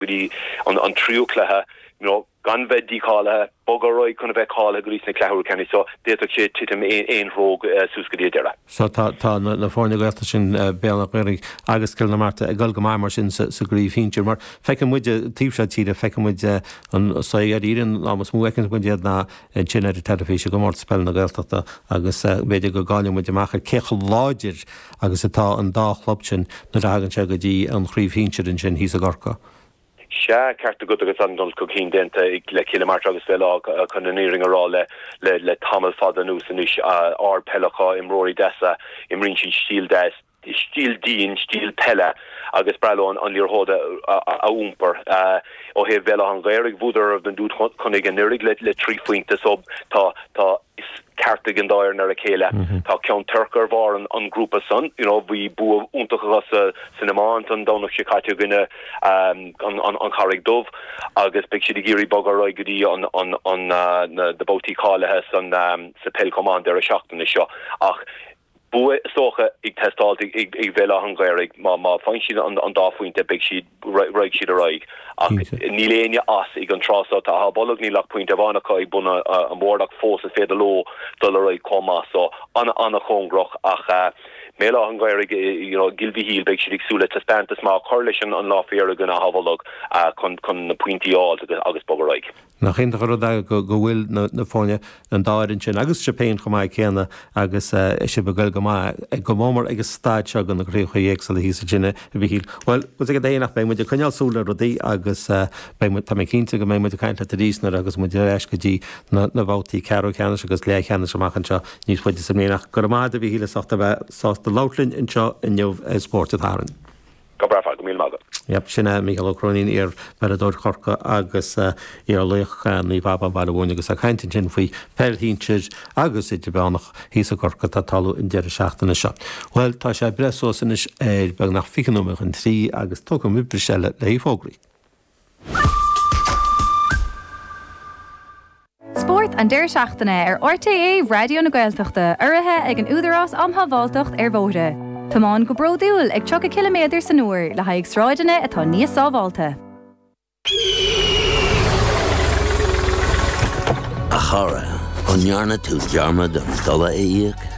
go dtí an tríú cluiche, you know gan bheith dícháilithe, bogadh ar aghaidh chun a bheith cáilithe go dtí na cluichí ceannais, so d'fhéadfadh sé titim aon threo suas go dtí an deireadh. So tá tá na foirne Gaeltachta sin, Béal Átha Ghaorthaidh agus Cill na Martra ag dul go maith mar sin sa gcraobh shinsir mar feiceann muide taobh seo tíre, feiceann muid an, so i ndáiríre is mó a fheiceanns muid iad ná ansin ar an teilifís i gComórtas Peile na Gaeltachta agus b'fhéidir go gcailleann muid amach ar cé chomh láidir agus atá an dá chlub sin nuair a thagann sé go dtí an chraobh shinsir ansin thíos i gCorcaigh Sea, ceart agat agus an-dul chun cinn déanta ag Cill na Martra agus Béal Átha chun an fhírinne a rá le tamall fada anuas anois. Ardpheil acu, imreoirí deasa, imríonn siad stíl deas. stíl dian, stíl peile agus is breá leo an liathróid a iompar. Ó thaobh Bhéal Átha'n Ghaorthaidh, bhuadar ar Ráth an Dúchonnaigh anuiridh le trí phointe so tá aithne cheart ag an dá fhoireann ar a chéile. Tá Ceann Toirc ar bharr an grúpa san. You know bhí bua iontach acu sa san iomáint an Domhnach seo caite i gcoinne An Charraig Dhubh agus beidh siad ag iarraidh bogadh ar aghaidh go dtí an an an na na babhtaí cáilithe san sa peil chomh maith an deireadh seachtaine seo ach bua is dócha ag teastáil ag Béal Átha an Ghaorthaidh. Má fhaigheann siad an dá phointe beidh siad, raghaidh siad ar aghaidh ach níl éinne as ag an tráth seo. Tá Áth Bolg, níl ach pointe amháin acu ag bun an bhoird ach fós is féidir leo dul ar aghaidh chomh maith. So an-chóngarach ach Béal Átha an Ghaorthaidh, you know, Cill Mhichíl, beidh siad ag súil le taispeántas maith a chur leis an lá i gcoinne Áth Bolg chun na pointí a fháilt agus bogadh ar aghaidh. Nach iontach an rud é go bhfuil na foirne an dá fhoireann sin agus sibh féin chomh maith céanna agus sibh ag goil go maith go mór mór ag an staid seo ag na craobhacha éagsúla thíos ansin, a Mhichíl. Bhuel, go dtuga Dia nach mbeidh muid ag coinneáil súil le rudaí agus beidh muid, tá mé cinnte go mbeidh muid ag caint leat arís nuair a agus muid ar ais go dtí na babhtaí ceathrú-cheannais agus leathcheannais amach anseo níos faide sa mbliain ach go raibh maith agat a Mhichíl as ucht a bheith sásta labhairt linn anseo inniu ar Spórt an tSathairn. Go breá, go raibh míle maith agat. Yep, sin é Mícheál Ó Cróinín, iar-pheileadóir Chorcaí agus iar-laoch Naomh Abán Bhaile Bhuirne agus é ag caint ansin faoi pheil shinsir agus idirmheánach thíos i gCorcaigh atá ag tarlú an deireadh seachtaine seo. Bhuel, tá sé ag breith suas anois ar beagnach fiche nóiméad chun trí agus tógfaimid bris eile léi. Fógraí. Spórt an deireadh seachtaine ar RTÉ Raidió na Gaeltachta urraithe ag an Údarás Um Shábháilteacht ar Bhóithre. Tiomáin go bródúil ag 30 ciliméadar san uair le haghaidh sráideanna atá níos sábháilte. A chara, an ndearna tú dearmad an dola a íoc?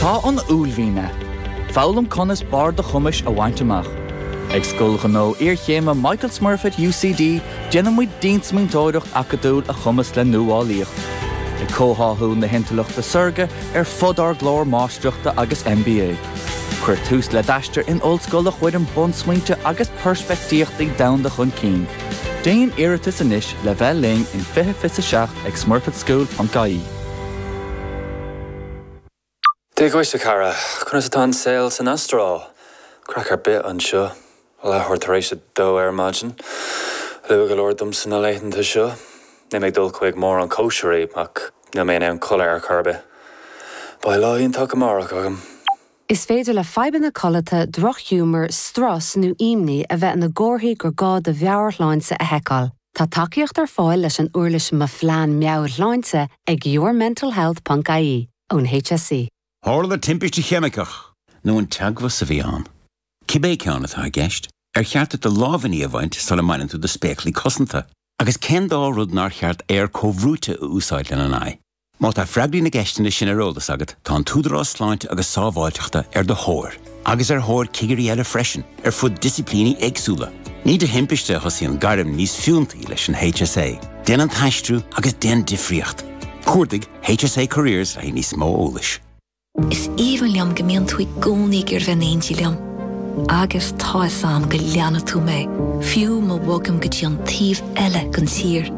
Tá an uaillmhian ag foghlaim conas barr do chumais a bhaint amach. Ag Scoil Ghnó Iarchéime Michael Smurfit UCD déanaimid diansmaointeoireacht acadúil a chumasc le nuálaíocht. ag comhtháthú na hintleachta saorga ar fud ár gclár máistreachta agus MBA. Cuir tús le d'aistear in ollscoil a chuireann bunsmaointe agus peirspictíochtaí domhanda chun cinn. Déan iarratas anois le bheith linn in 2027 ag smurfitschool.ie. Dia dhuit, a chara. Conas atá an saol san Astráil? Craic ar bith anseo. Leathuair tar éis a dó ar maidin. Luath go leor domsa na laethanta seo. Níl mé ag dul chuig mórán cóisirí, ach níl mé in ann codladh ar chor ar bith. Beidh lá iontach amárach agam. Is féidir le fadhbanna codlata, drochghiúmar, strus nó ímní a bheith ina gcomharthaí gur gá do mheabhairshláinte a sheiceáil. Tá tacaíocht ar fáil leis an uirlis Mo Phlean Meabhairshláinte ag yourmentalhealth ponc ie ón HSE. Tharla timpiste cheimiceach. nó an teagmhas a bhí ann. Cibé ceann atá i gceist, ar cheart duit do lámhainní a bhaint sula mbaineann tú do spéaclaí cosanta? Agus cén dá rud nár cheart aer comhbhrúite a úsáid lena aghaidh? Má tá freagraí na gceisteanna sin ar eolas agat, tá an tÚdarás Sláinte agus Sábháilteachta ar do thóir, agus ar thóir cigirí eile freisin, ar fud disciplíní éagsúla. Ní de thimpiste a thosaíonn gairm níos fiúntaí leis an HSA. Déan an t-aistriú agus déan difríocht! Cuardaigh HSA Careers le níos mó eolais. Is aoibhinn liom go mbíonn tú i gcónaí ag iarraidh bheith in éindí liom. Agus tá fhios a'm go leanfaidh tú mé, fiú má bhogaim go dtí an taobh eile den tír.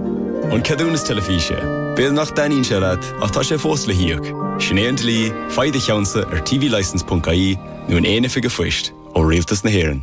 An ceadúnas teilifíse. B'fhéidir nach dtaitníonn sé leat ach tá sé fós le híoc. Sin é an dlí, faigh do cheannsa ar tvlicense.ie nó in aon oifig a' phoist ó Rialtas na hÉireann.